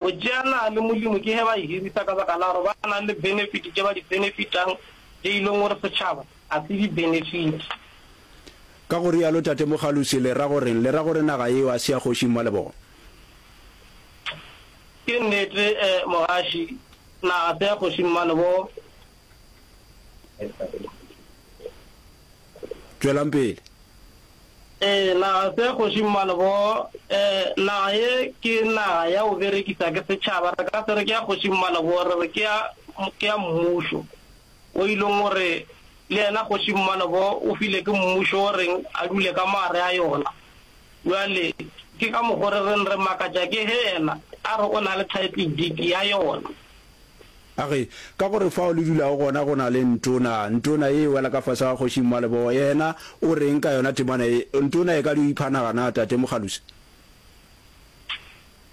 Go tšeana le Molimo ke ge ba e hirisa ka baka la gore ba na le benefiti tše ba di benefitang tše e leng gore setšhaba ga se di benefite. Ka go rialo Tate Mogalosi le ra go reng? Le ra gore naga yeo a se ya Kgoši Mmalebogo? Ke nnete Mogaši, naga se ya Kgoši Mmalebogo. Tšwelang pele. Ee, naga se kgoši mmane bo. Ee, naga ye ke naga ya go berekisa ke setšhaba. Re ka se re ke ya kgoši mmane bo, re re ke ya, ke ya mmušo. O ilong o re, Le yena kgoši mmane bo o file ke mmušo o reng a dule ka maare a yona. Bjale, ke ka mokgo re reng re makatša ke ge yena a re o na le title deed ya yona. A re, Ka gore fao le dulago gona go na le ntona, ntona ye e wela ka fase ga Kgoši Mmalebogo. Yena o re'ng ka yona temana ye? Ntona e ka di o ipha naga na, Tate Mogalusi?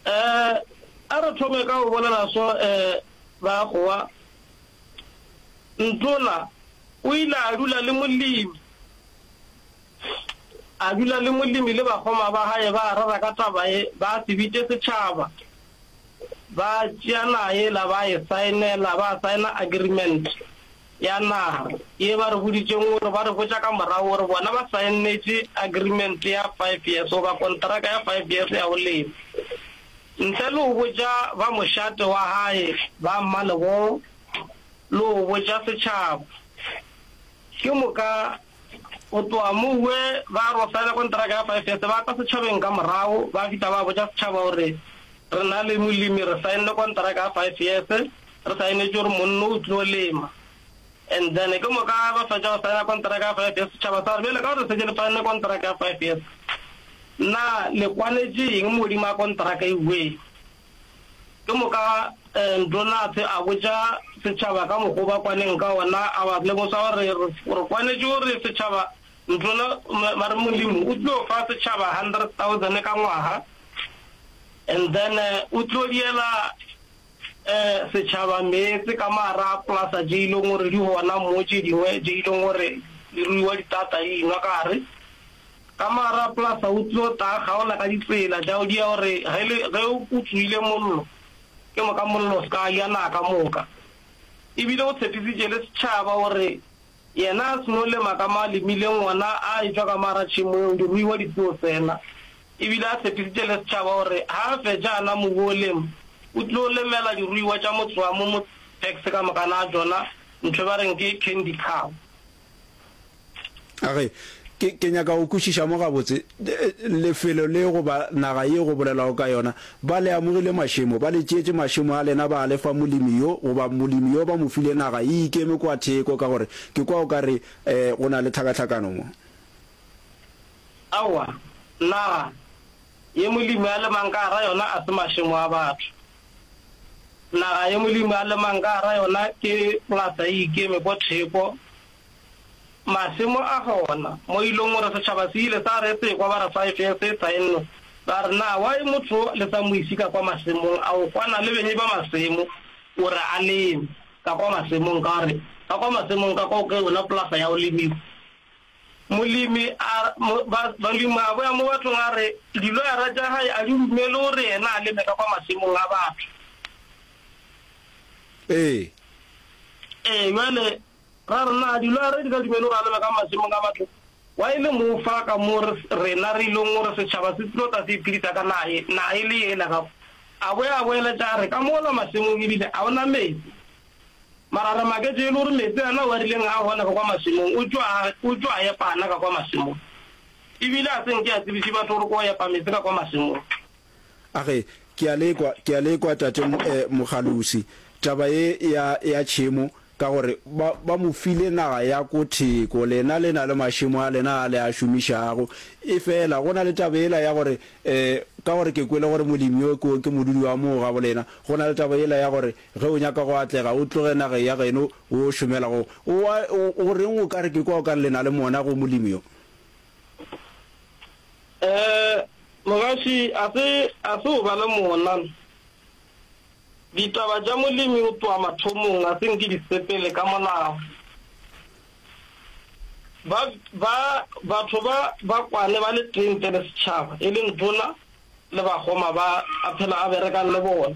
Ee, a re thome ka go bolela so, ee, Bakgowa. Ntona o ile a dula le Molemi, a dula le Molemi le bakgoma ba gae, ba rera ka taba ye, ba se bitše setšhaba. ba tšea naga yela ba e saenela, ba saena agreement ya naga ye ba re boditšeng gore ba re botša ka morago gore bona ba saennetše agreement ya five years goba konteraka ya five years ya go lema. Ntle le go botša ba mošate wa gae, ba mmalebogo le go botša setšhaba, ke moka Go tloga moo we ba ro saena konteraka ya five years, ba tla setšhabeng ka morago ba fihla ba botša setšhaba gore re na le molemi re saenne konteraka ya five years, re saenetše gore monno o tlo lema. And then ke moka ba fetša go saena konteraka ya five years, setšhaba sa re bjale ka gore re šetše le saenne konteraka ya five years, na le kwanetše eng mo godimo ga konteraka e we? Ke moka Ntlo Naatse a botša setšhaba ka mokgo ba kwaneng ka wona, a ba lemosa gore re kwanetše gore setšhaba Ntlo na, ba re Molimo o tlo fa setšhaba 100,000 ka ngwaga, and then o tlo diela setšhaba meetse ka mara plasa tše ileng gore di gona mo tše dingwe tše ileng gore di ruiwa ditata di inwa ka gare. Ka mara plus o tlo ta kgaola ka ditsela tša di ya gore ge le ge o kutsoile mollo ke moka mollo o se ka ya naka moka e bile o tshepisitše le setšhaba gore yena a se no lema ka ma lemile ngwana a etšwa ka mara tšhemo eo diruiwa di tlo tsena e bile a tshepisitše le setšhaba gore ha a fetša ana mobu o lema o tlo lemela diruiwa tša motsoamo mo tax ka moka na tšona ntho ba reng ke candy cow. Age, ke, ke nyaka go kwešiša mo gabotse, lefelo le goba naga ye go bolelwago ka yona. Ba le amogile mašemo, ba le tšeetše mašemo a lena ba a le fa molemi yo, goba molemi yo ba mo file naga e ikeme kwa theko, ka gore ke kwa o ka re, e, go na le tlhakatlhakano mo. Aowa, naga, ye molemi a lemang ka gare ga yona a se mašemo a batho. Naga ye Molimo a lemang ka gare ga yona ke ngata e ikeme ko theko. Masimo a gona mo e lego gore setšhaba se ile sa re tsekwa ba re sa e fe setsha e nno ba re, Na why motho wo le sa mo isi ka kwa masimong a go kwana le benyi ba masimo gore a leme ka kwa masimong? Ka re, Ka kwa masimong ka kwa ke yona polasa ya go lemiwa. Molemi a ba, balemi a boya mo bathong a re, Diloyara tša gae a di dumele gore yena a leme ka kwa masimong a batho. Ee. Ee, bjale, ra re, Na diloyara di ka dumela gore a leme ka masimong a batho? Gwa e le moo fa ka moo re, rena re ilong gore setšhaba se tlo tla se iphedisa ka naga ye, naga e le yela. Ka kwa, a boya a boeletša a re, Ka mola masimong e bile ga go na meetse. Mara re maketše e le gore meetse a na ao a rileng a hona ka kwa mašemong o tšo a, o tšo a epa ana ka kwa mašemong. E bile a se nke a tsebiše batho gore ko epa meetse ka kwa mašemong. A re, Ke a le kwa, ke a le kwa, Tate mo, eh, Mogalusi, taba ye ya, ya tšhemo, ka gore ba, ba mo file naga ya ko theko, lena le na le mašemo a lena a le a šomišago. Efela go na le taba yela ya gore, eh, ka gore ke kwele gore molemi yo ke, ke modudi wa moo gabolena, go na le taba yela ya gore, Ge o nyaka go atlega, o tloge nageng ya geno o šomela go. O a, o, o reng o ka re ke kwa o ka re le na le mona go Molimo yo? Ee, mogaši, a se, a se o ba le mona. Ditaba tša Molimo go tloga mathomong ga se nke di sepele ka molao. Ba, ba, batho ba, ba kwane ba le tee ntle le setšhaba, e leng tona le bakgoma ba a phela a berekang le bona.